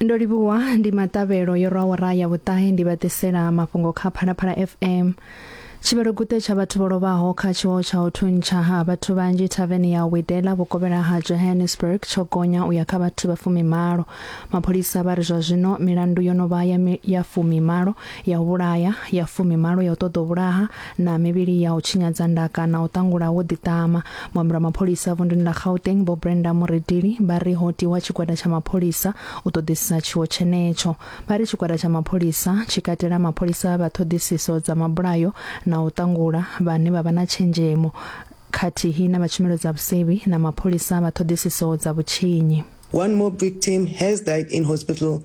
ndo livhuwa ndi maṱavhelo yo rwa awara ya vhuṱahe ndi vha ḓisela mafhungo kha phalaphala fm tshivhaloguṱe tsha vhathu vho lovhaho kha tshiwo tsha u thuntsha ha vhathu vhanzhi thaveni ya widela vhukovhela ha johannesburg tsho gonya u ya kha vhathu vha fumimalo mapholisa vha ri zwa zwino milandu yo no vha ya, ya fumimalo ya u vhulaya ya fumimalo ya u ṱoḓa u vhulaha na mivhili ya u tshinyadza ndaka na u ṱangula wo ḓiṱama muambi wa mapholisa vunduni ḽa gauteng vho brenda muredili vha ri ho tiwa tshigwada tsha mapholisa u ṱoḓisisa tshiwo tshenetsho vha ri tshigwada tsha mapholisa tshi katela mapholisa vha ṱhoḓisiso dza mabulayo na u ṱangula vhane vha vha na tshenzhemo khathihi na vha tshumelo dza vhusevhi na mapholisa vha ṱhoḓisiso dza vhutshinyi One mob victim has died in hospital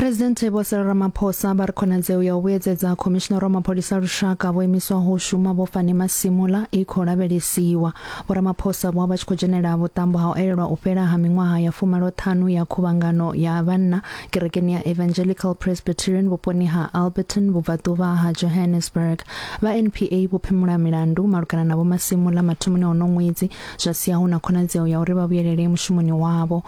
Presidente Vho Cyril Ramaphosa vha ri khonadzeo ya u vhuyedzedza khomishinara wa mapholisa lushaka vho imiswaho shuma vho Fani Masimula i khou lavhelesiwa. Vho Ramaphosa vho vha tshi khou dzhenela vhuṱambo ha u elelwa u fhela ha miṅwaha ya fumaloṱhanu ya khuvhangano ya vhanna kerekeni ya Evangelical Presbyterian vhuponi ha Alberton vhubvaḓuvha ha Johannesburg. Vha NPA vho phimula milandu malugana na Vho Masimula mathomoni ono ṅwedzi zwa sia hu na khonadzeo ya uri vha vhuyelele mushumoni wavho.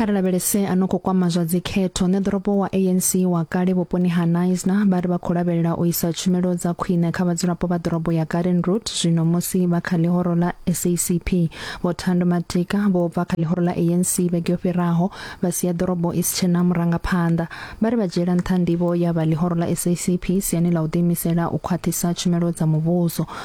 Kha ri lavhelese a no khou kwama zwa dzikhetho. Ṋeḓorobo wa ANC wa kale vhuponi ha Knysna vha ri vha khou lavhelela u isa tshumelo dza khwine kha vhadzulapo vha ḓorobo ya Gardensroodt zwino musi vha kha ḽihoro ḽa SACP. Vho Thando Matika vho bva kha ḽihoro ḽa ANC vhege yo fhiraho vha sia ḓorobo i si tshe na murangaphanḓa. Vha ri vha dzhiela nṱha ndivho ya vha ḽihoro ḽa SACP siani ḽa u ḓiimisela u khwaṱhisa tshumelo dza muvhuso.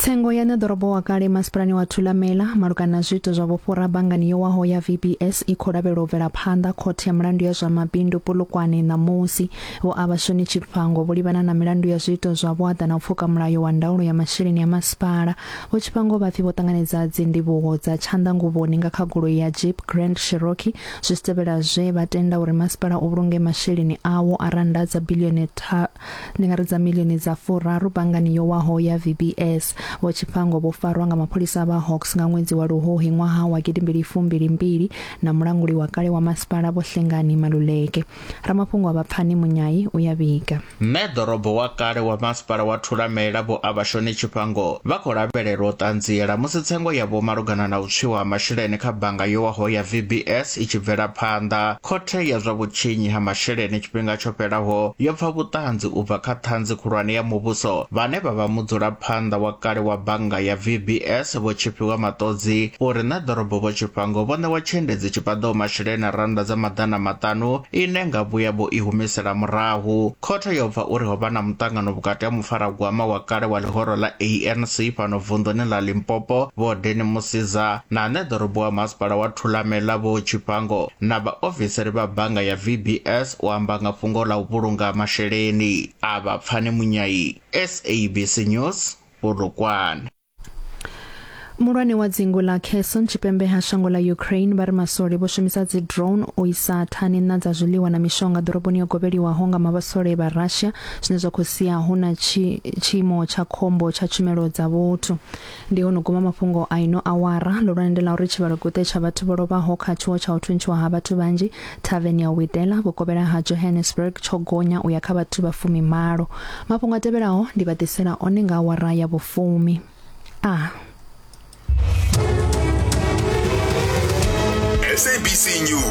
tsengo ya ṋeḓorobo wa kale masipalani wa thulamela malugana na zwiito zwa vhufhura banngani yo waho ya vbs i khou lavhelwa u bvela phanḓa khothe ya milandu ya zwa mabindu polokwane ṋamusi vho a vhashoni tshifhango vho livhana na milandu ya zwiito zwa vhuaḓa na u pfuka mulayo wa ndaulo ya masheleni ya masipala vho tshifhango vha pfi vho ṱanganedza dzindivhuho dza tshanḓanguvhoni nga kha goloi ya jeep grand cherokee zwi si tevhela zwe vha tenda uri masipala u vhulunge masheleni awo a randa dza bilioni tha Ndi nga ri dza milioni dza furaru banngani yo waho ya VBS. Vho Chiphango vho farwa nga mapholisa vha Hawks nga ṅwedzi wa Luhuhi ṅwaha wa gidimbili fumbili mbili na mulanguli wa kale wa masipala Vho Hlengani Maluleke. Ramafhungo a Vhapfani Munyai u ya vhiga. Mme ḓorobo wa kale wa masipala wa Thulamela Vho Avashoni Chiphango vha khou lavhelelwa u ṱanziela musi tsengo yavho malugana na u tswiwa ha masheleni kha bannga yo waho ya VBS i tshi bvela phanḓa. Khothe ya zwa Vhutshinyi ha Masheleni tshifhinga tsho fhelaho yo pfa vhuṱanzi u bva kha Ṱhanzi Khulwane ya Muvhuso vhane vha vha mudzulaphanḓa wa kale wa bannga ya VBS Vho Tshifhiwa Maṱodzi uri Ṋe Ḓorobo Vho Tshifhango vho ṋewa tshiendedzi tshi paḓaho masheleni a rannda dza maḓana maṱanu ine nga vhuya vho i humisela murahu Khothe yo pfa uri ho vha na muṱangano vhukati ha mufaragwama wa kale wa ḽihoro ḽa ANC fhano vunḓuni ḽa Limpopo Vho Danny Mosiza na ane ḓorobo wa masipala wa Thulamela Vho Tshipango na vhaofisiri vha bannga ya VBS u amba nga fhungo ḽa u vhulunga masheleni a vha Pfani Munyai, SABC News, Polokwane. muhulwane wa dzingu ḽa kherson tshipembe ha shango ḽa ukraine vha ri maswole vho shumisa dzi drone u isa thani na dza zwiḽiwa na mishonga ḓoroboni yo gobeliwaho nga mavhasole vha russia zwine zwa khou sia hu na tshiimo tsha khombo tsha tshumelo dza vhuthu ndi ho no guma mafhungo a ino awara ḽo lwande ḽa uri tshivhalo guṱe tsha vhathu vho lovhaho kha tshiwo tsha u thuntshiwa ha vhathu vhanzhi Thaveni ya Widela vhukovhela ha Johannesburg tsho gonya u ya kha vhathu vha fumi malo. Mafhungo a tevhelaho ndi vha ḓisela one nga awara ya vhufumi. A. SABC News.